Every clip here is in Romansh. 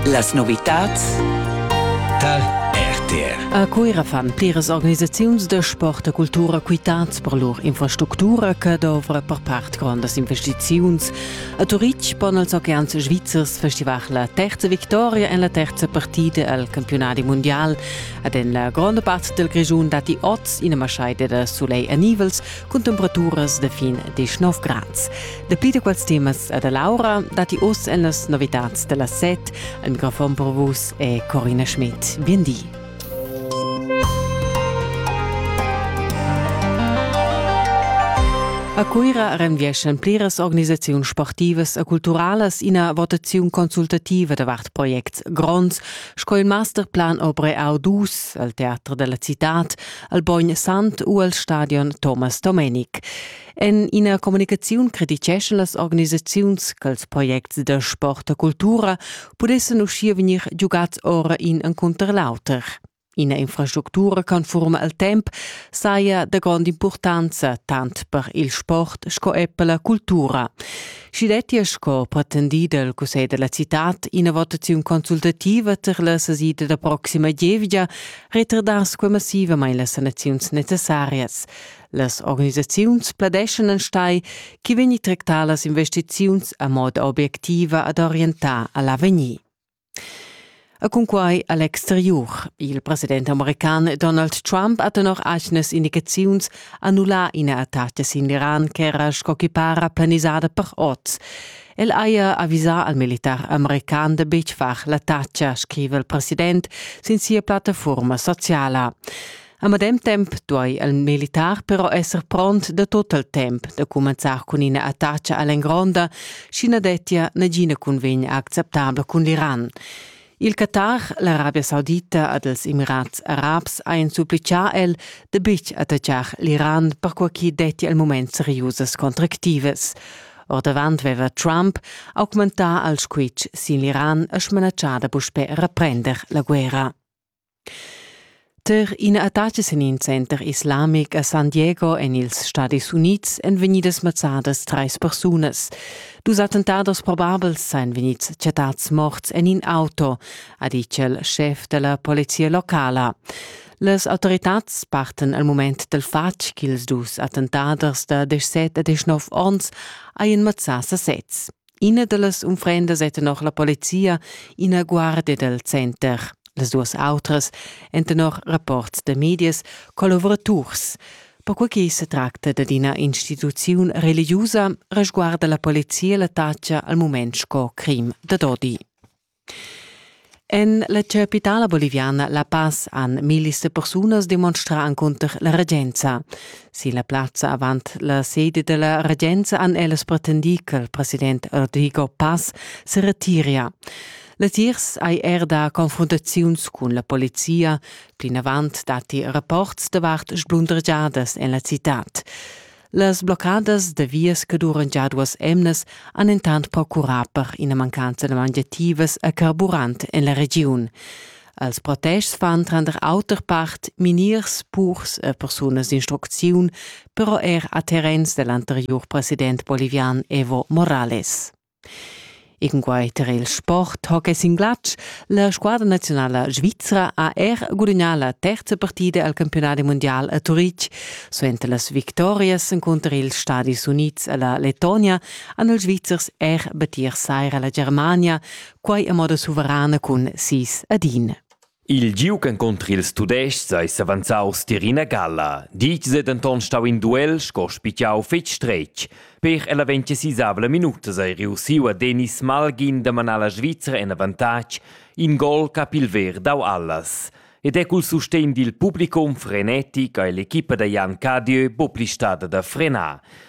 Las novitads tar RTR. A Cuira fan pliras organisaziuns da sport e cultura quitads per lur infrastructura che dovra per part grondas investiziuns. A Turitg pon els oceans svizzers festivar la terza victoria en la terza partida al campionadi mondial. Ed en la gronda part del Grischun datti oz ina maschaida da soleil e nivels cun temperaturas da fin 19 grads. Dapi da quels temas e da Laura datti oz en las novitads da las set. Al microfon per vus è Corina Schmidt. Bien di. A Cuira renvieschan pliras organisaziuns sportivas e culturalas ina votaziun consultativa davart projects gronds sco il Masterplan Obre Audus al Teater della Città, al Bogn Sant u al Stadion Thomas Domenic. En ina communicaziun crititgescha las organisaziuns ch'ils projects da sport e cultura pudessan uschia vegnir giugads ora in encunter l'auter. Ina infrastructura conforma al temp saja da grond'impurtanza tant per il sport sco er per la cultura. Sch'i dettia sco pretendì dal Cussegl della citad ina votaziun consultativa tar la sesida da proxima gievgia, retardass quei massivamain las sanaziuns necessarias. Las organisaziuns pladeschan enstai chi vegni tractà las investiziuns a moda obiectiva ad orientar a l'avegnir. A cunquai a l'exteriur. Il president american Donald Trump ha tenor aignas indicaziuns annullà ina attaca sin l'Iran ch'era sco chi para planisada per oz. El haja avisà al militar american da betg far l'attacca, scriva il president sin sia plattafuorma sociala. A medem temp duai il militar però esser pront da tot il temp da cumenzar cun ina attacca a l'engronda, sch'i na dettia nagina cunvegna acceptabla cun l'Iran. Il Qatar, l'Arabia Saudita ed ils Emirats Arabs hajan supplitgà el da betg attaccar l'Iran per quai ch'i dettia il mument seriusas contractivas. Ordavant aveva Trump augmentà il squitsch sin l'Iran e smanatschà da puspè reprender la guerra. Ter ina attacca sin in center islamic a San Diego en ils Stadis Unids èn vegnidas mazzadas trais persunas. Dus attentados probabels sain vegnids chattads morts en in auto, ha ditg il schef da la polizia locala. Las autoritads parten al mument dal fatg ch'ils dus attentaders da 17 e 19 onns hajan mazzà sasez. Ina dallas unfrendas ei tenor la polizia ina guardia dal center. Las duas autras ein tenor rapports da medias collaboraturs. Perquei che se tracta dad ina instituziun religiusa, resguarda la polizia la taccia al mument sco crim da dodi. En la chapitala boliviana La Paz han millis da persunas demonstrà encunter la regenza. Sin la plazza avant la sede da la regenza han ellas pretendì ch'il president Rodrigo Paz se retiria. Latiers hai er da confrontaziuns cun la polizia. Plinavant datti rapports davart sblundregiadas en la citad. Las bloccadas da vias che duran già duas emnas han intant procurà per ina mancanza da mangiativas a carburant en la regiun. Als protests fan tranter auter part miniers, purs e persunas d'instrucziun, però er a terrens dell'anteriur president bolivian Evo Morales. Cunquai tar il sport hockey sin glatsch la squadra naziunala svizra ha er gudagnà la terza partida al campiunadi mundial a Turitg. Suenter las victorias encunter ils Stadis Unids e la Lettonia han ils Svizzers er battir saira la Germania, quai a moda suverana cun sis ad in. Il giug encunter ils Tudestgs ei s'avanzaus tier ina galla, ditg ei denton stau in duel sco spitgau fetg stretg. Per ella vegn sisavla minutas ei reussiu a Denis Malgin da manar la Svizra en avantatg, in gol che ha pil ver dau allas. Ed è cul sustegn dil publicum frenetic ei l'equipa da Jan Cadieu buca pli stada da frenar.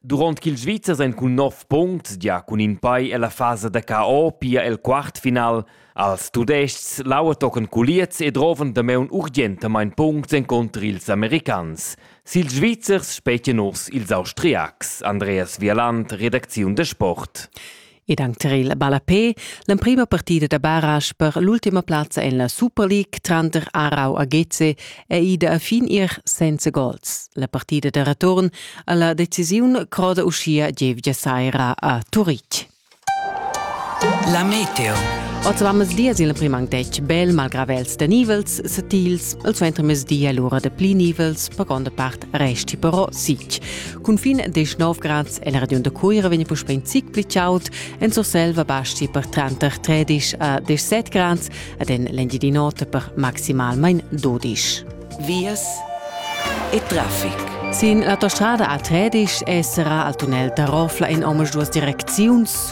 Durant ch'ils Svizzers ein cun nov punts gia cun in pei ella fasa da KO pia el quartfinal als Tudests laua tochen culiez e drovan damaun urgentamain punts encunter ils americans. Sil Svizzers spetgan urs ils Austriacs. Andreas Vialand, redacziun da sport. ed anc tar il ballapé l'emprima partida da barage per l'ultima plazza en la Super League tranter Aarau a Geze è ida a fin ir senza gols. La partida da return a la decisiun croda uschia gievgia saira a Turitg. La meteo. Oz avammes dies il prim anc detg bel malgrà vels da nivels satils, il suentermezdi è l'ura da pli nivels, per gronda part resti però sitg. Cunfin 19 grads el radion da Cuira vegni puspè in zic pli chaud, en Surselva basti per tranter 13 a 17 grads ed en l'Engiadi Note per maximalmain 12. Vias e traffic. Sin l'autostrada a Tredisch esserà al tunnel da Rofla in omas duas direcziuns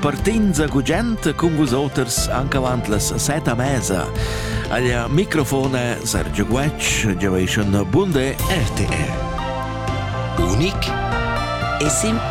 Partenza gugent cun vus oters anche avant las set a mesa. Alla microfone Sergio Guecc, Generation Bunde RTR. Unic e simple.